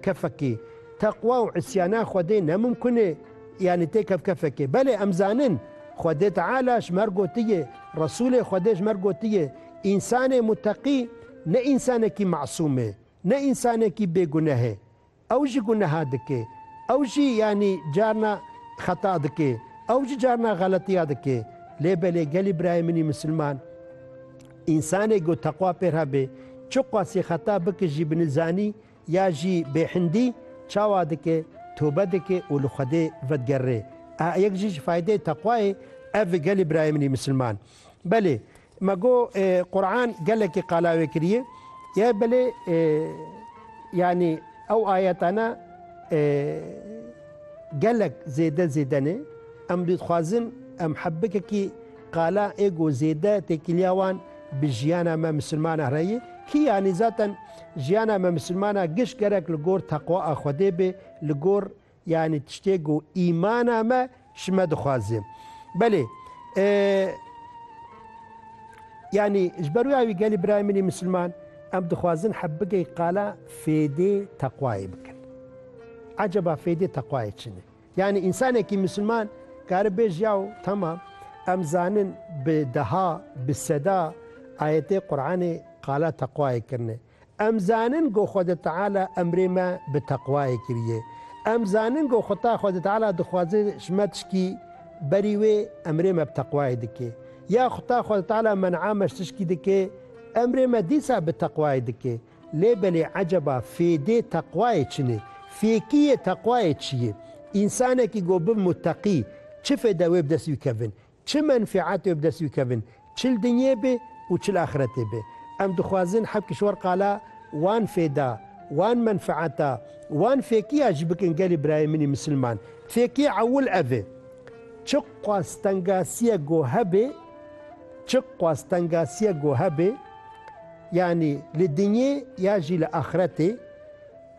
Kefekî, teqwa û îsyana Xwedê ne mumkun e, yanî tê kevkefek e. Belê em zanin Xwedê Teala ji mer gotiye, Resûlê Xwedê ji mer gotiye, Însanê muteqî ne însanekî mesûm e, ne însanekî bê guneh e. Ew jî guneha dike. Ew jî yanî carna xeta dike. Ew jî carna xeletiya dike. Lê belê gelî birayê min ê misilman, însanê ku teqwa pêr hebe, çi qasî xeta bike jî binizanî Ya jî bêhindî çawa dike, tobe dike û li Xwedê vedigerre. Aha yek jî ji faydeyê teqwayê ev e gelê birayê min ê misilman. Belê me got Quran gelekî qala wê kiriye ye belê yanî ew ayetane gelek zêde zêde ne. Em dixwazin em hebikekî qala ê got zêde têkiliya wan bi jiyana me misilmanan re ye. Kî yanî zaten Jiyana me misilmana giş gerek li gor teqwa a Xwedê bê, li gor yanî tiştê ku îmana me ji me dixwaze. Belê yanî ji ber wê awî gelê birayê min ê misilman em dixwazin heb bigey qala fêdê teqwayê bikin. Eceba fêdê teqwayê çi ne? Yanî însanekî misilman karibêj yaw tamam em zanin bi deha, bi seda ayetê Quranê qala teqwayê kirine. Em zanin go Xwede Teala emrê me bi teqwayê kiriye. Em zanin go Xweta Xwede Teala dixwaze ji me tişkî berî wê emrê me bi teqwayê dike. Ya Xweta Xwede Teala men'a me ji tişkî dike emrê me dîsa bi teqwayê dike. Lê belê eceba fêdê teqwayê çin ê? Fêkiyê teqwayê çi ye? Însanekî ku bi muteqî, çi fêde wê bi dest wî kevin? Çi menfeet wê bi dest wî kevin? Çi li dinyê bê û çi li axretê bê? Em dixwazin heft kişwar qala wan fêda, wan menfeeta, wan fêkiya jî bikin gelê birayê min ê misilman. Fêkiyê ewil ev ê. Çi xwestengasiye ku hebe, çi xwestengasiye ku hebe, Yanî li dinyê ya jî li axiretê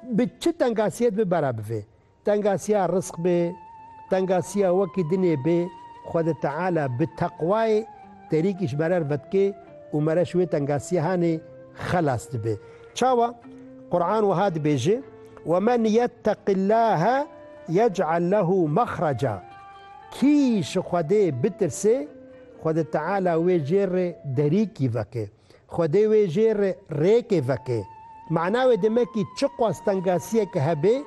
bi çi tengasiyê dibe bera bivê. Tengasiya rizq bê, tengasiya wekî dinê bê, Xwedê Teala bi teqwayê terîkî ji merer vedikê û mere ji wê tengasiyahanê xelas dibê. Çawa? Quran wiha dibêje, Wemen yetteqillahe yec'el lehu mexreca. Kî ji Xwedê bitirse, Xwedê Teala wê jê re derîkî veke. Xwedê wê jê re rêkê veke. Mana wê demekî çiqas tengasiyeke hebe,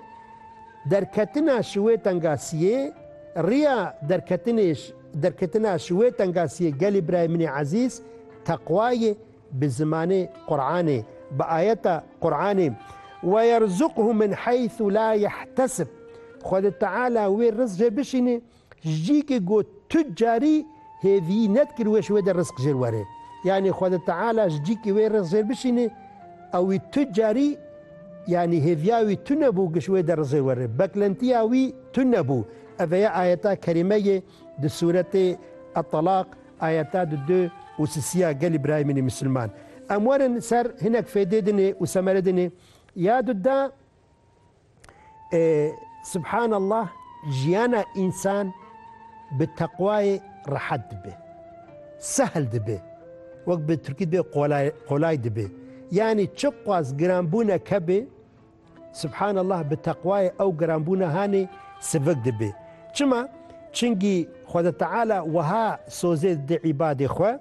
derketina ji wê tengasiyê, riya derketinê ji derketina ji wê tengasiyê gelê birayê min ê ezîz, teqwa ye, bi zimanê Quranê, bi ayeta Quranê, Ve yerzuqhu min heythu la yehtesib, Xwedê Teala wê riz jê bişîne Jîkê got tu carî hêvîyî nedikir wê ji wê de rizq jêr were. Yanî Xweda Teala ji cîkê wê rizq jêr bişîne, ew wî tu carî yanî hêviya wî tune bû ji wê de rizq jêr were. Beklentiya wî tune bû. Eve ye ayeta kerîme yê di sûretê Etalaq ayeta di du û sisiya gelî birayemînî misilman. Em werin ser hinek fêdê dinê û semere dinê. Ya du da Subhan Allah jiyana însan bi teqwayê rehet dibe. Sehl dibe. Wek bi Tirkî dibê qolay qolay dibe. Yanî çiqas giranbûnek hebe Subhan Allah bi teqwayê ew giranbûna hanê sivik dibe. Çima? Çingî Xweda Teala wiha sozê dide îbadê xwe,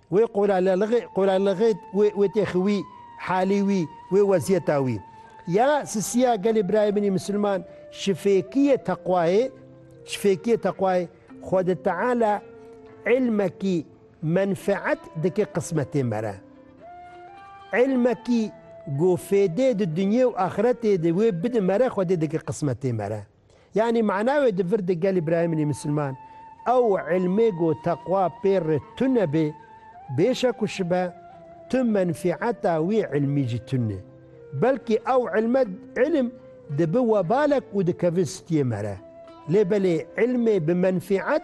Wê qola lelixê, qola lixê wê, wê têxi wî, halî wî, wê weziyeta wî. Ya sisiya gelê birayê min ê misilman şifêkiyê teqwayê, şifêkiyê teqwayê Xwedê Teala îlmekî menfeet dike qismetê me re. Îlmekî ku fêdê di dinyê û axiretê de wê bide me re Xwedê dike qismetê me re. Yanî mana wê di vir de gelê birayê min ê misilman ew îlmê ku teqwa pê re tune bê, bêşek ku şibe tu menfîeta wî îlmî jî tune. Belkî ew îlme îlim dibi webalek û dikeve stiyê me re. Lê belê îlmê bi menfîet,